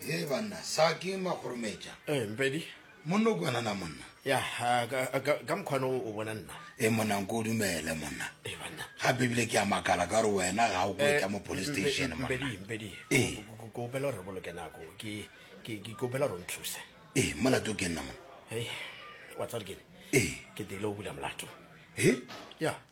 Hee banna, sa ke makgorometša. Eh, Mpedi. Monna o kwana na monna? Ya, ah, ka, ka, ka mokgwana o o bona nna. E monna nko o dumele monna. Eh, banna. Gape ebile ke a makala ka gore wena ga o kwetla mo police Eh, Mpe- station monna. Mpedi, Mpedi. Eh. Ko- ko- ko opela gore boloke nako. Ke, ke, ke ko opela gore o nthuse. Ee, molato ke nna monna. Hei, wa tsare kene. Ee. Ke tlile o bula molato. He? Ya.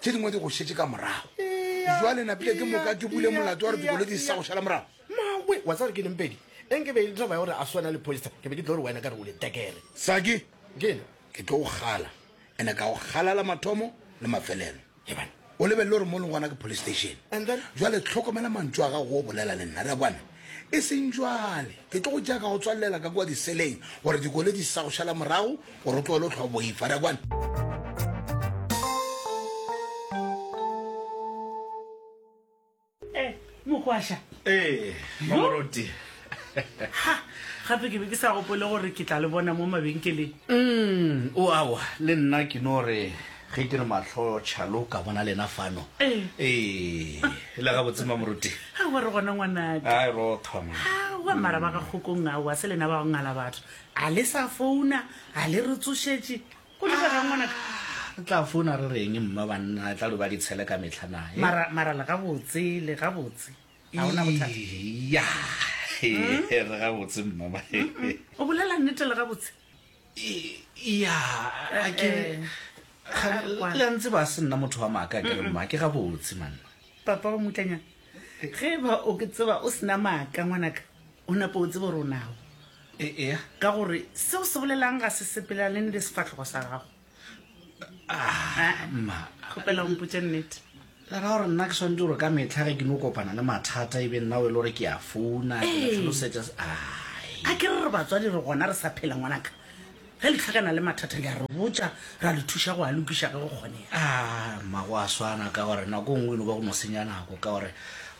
tše dingwe di go šetše ka morago jwale napile ke moka ke bule molato wa re dikolo di sa go šala morago mawe wa tsa gore ke nempedi e nke be e tlo ba gore a swana le poster ke be ke tlo gore wena ka re o le tekere saki ke ke tlo go gala ene ka go galala mathomo le mafelelo o lebelele gore mo leng gona ke police station jwale tlhokomela mantso a gago o bolela le nna re a kwana E seng bjale. Ke tlo go tšea ka go tswalela ka kua diseleng gore dikole di se sa go šala morago gore o tlogele go hlwa boifa. Re a kwana? Mogwaša. Ee, Mamoruti. Ha, gape ke be ke sa gopole gore ke tla le bona mo mabenkeleng. Mm, o awa, le nna ke no re Ge ke re mahlo tšhalo ka bona lena fano. Ee. Ee, le gabotse mamoruti. A wa re gona ngwanake. A e ro thoma. A wa mara ba ga kgokong a wa se lena ba go ngala batho. A le sa founa, a le re tsošetše. Go le ga ngwanaka. Re tla founa re reng mma banna a tla lo ba di tshele ka mehla na. Mara mara le gabotse, le gabotse. A ona bothata. Ya. Re gabotse mma. O bolela nnete le gabotse. ya a ke la ntse ba se nna motho wa maaka ke re mma ke gabotse manna papa wa mutlanyana ge ba o ke tseba o sena maaka ngwanaka o napo o tsebo ronago ea ka gore seo se bolelang ga se sepelelane le sefatlhogo sa gago kgopela ompotse nnete lera gore nna ke tshwanetse gore ka metlha ge ke no kopana le mathata e be nna o e le gore ke a founa ketlhalosetsa a ke re re batswadi re gona re sa phela ngwanaka ge le tlhakana le mathata le a re botsa ra le thuša go a lokiša ge go kgonega mmago a swana ka gore nako nngwe e no ba go no senya nako ka gore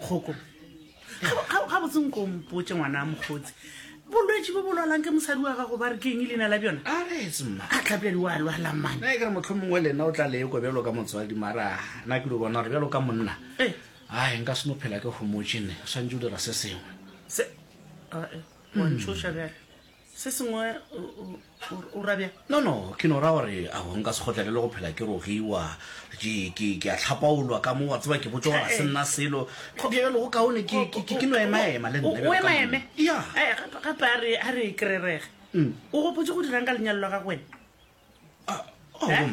kgoko ga botse nko mpotse ngwana a mokgotsi bolwetse bo bolwalang ke mosadi wa gago ba re keng e leina la bjona a tlhapledi wa lwala mane kere motlho mongwe lena o tla leko bjalo ka motswadi mara na ke lo bona gore bjalo ka monna ee ai nka seno phela ke homotšene o swantse o dira se sengwe se a e wa ntshoša bjale Se sengwe o ra bjang? No, no, ke no ra gore a go nka se kgotlelele go phela ke rogiwa. Ke, ke, ke a hlapaolwa ka mo, wa tseba, ke botse gore ga se nna selo. Go bjalo go kaone, ke, ke, ke no emaema le nna. O emaeme? Ya. Gape a re, a re e kererege. Mm. O gopotse go dirang ka lenyalo la gago wena? Ah, oh, eh?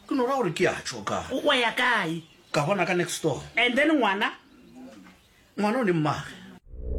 Ke no ra gore ke a tšho ka. O ya kae? Ka bona ka next door. And then ngwana? Ngwana o ne mmage.